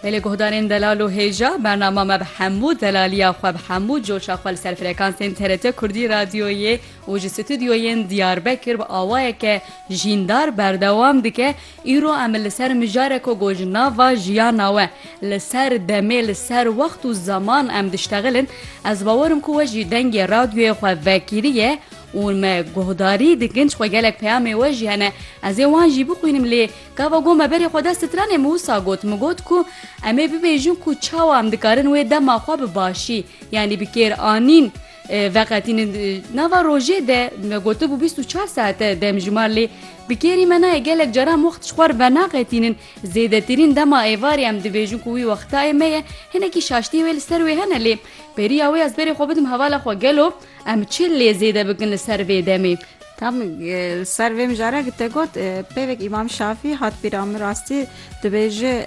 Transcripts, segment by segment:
Lê li guhdarên delal û hêja, bernama me bi hemû delaliya xwe, bi hemû coşa xwe li ser frekansên TRT Kurdî Radyoyê û ji stûdyoyên Diyarbekir bi awayeke jîndar berdewam dike. Îro em li ser mijare ku got ji nava jiyana we, li ser demê, li ser wext û zeman em diştexilin. Ez bawerim ku we jî dengê radyoyê xwe vekiriye û me guhdarî dikin, çixwe gelek peyamê we jî hene. Ez ê wan jî bixwînim lê Gava got me berê xwe dest di trenê min wisa got, min got ku em ê bibêjin ku çawa em dikarin wê dema xwe bi başî yanî bi kêranîn veqetînin. Di nava rojê de me gotibû bîst û çar saet e demjimar lê bi kêrî me nayê. Gelek caran wext ji xwe re venaxetînin. Zêdetirîn dema êvarê em dibêjin ku wî wextayê me ye. Hinekî şaştiyê wê li ser wê hene lê beriya wê ez berê xwe bidim hevala xwe gelo. Em çi lê zêde bikin li ser vê demê? Tam li ser vê mijara ki te got pêvek Îmam Şafî hat bîra min rastî dibêje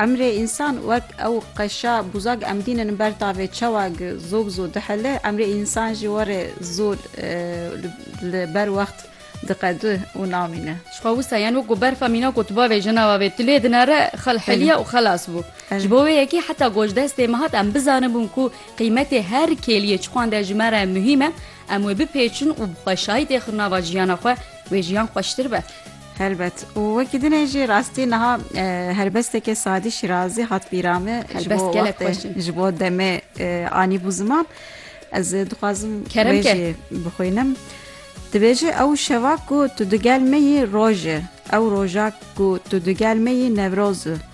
emrê însan wek ew qeşa bûza em dînin ber tavê çawa ki zû bi zû dihile emrê însan jî warê zû li ber wext diqedi û namîne. Ji xwe wisa yan wek ku berfa mîna ku tu bavê jina bavê tu lê dinare xelheliya û xelas bû. Ji bo wê yekê heta gojdestê min hat em bizanibûn ku Qîmetê her kêliyê çixwan de ji me re muhîm e, em wê bipêçin û bi xweşayî tê xin nava jiyana xwe, wê jiyan xweştir be. Helbet. Û wekî dinê jî rastî niha helbestekê Sadî Şîrazî hat bîra me ji bo wextê, ji bo demê anîbû ziman. Ez dixwazim wê jî bixwînim. Dibêje ew şeva ku tu digel me yî roj e, ew roja ku tu digel me yî newroz e.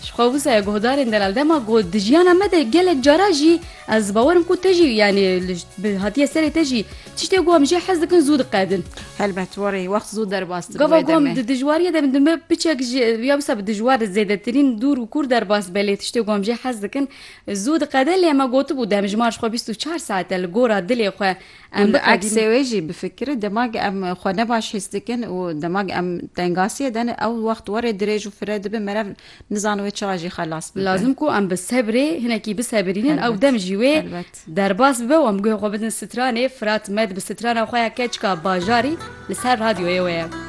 Ji xwe wisa ye guhdarên delal dema ku di jiyana me de gelek cara jî ez bawer im ku te jî yanî bi hatiye serê te jî tiştê ku em jê hez dikin zû diqedin. Helbet warê wext zû derbas dibin Gava wê ku em demê. di dijwariye de bin di me piçek jî ya wisa bi dijwar e zêdetirîn dûr û kûr derbas belê tiştê ku em jê hez dikin zû diqede lê me gotibû demjimar ji xwe bîst û çar saet e li gora dilê xwe Em li eksê wê jî bifikirin demag em xwe nebaş hîs dikin û demag em tengasiyê de ne ew wext warê dirêj û fire dibin merev nizan wê çawa jî xelas bibe. Lazim ku em bi sebrê hinekî bisebirînin ew dem jî wê derbas bibe û em guhê xwe bidin stranê. Firat Med bi strana xwe ya Keçika Bajarî li ser radyoyê we ye.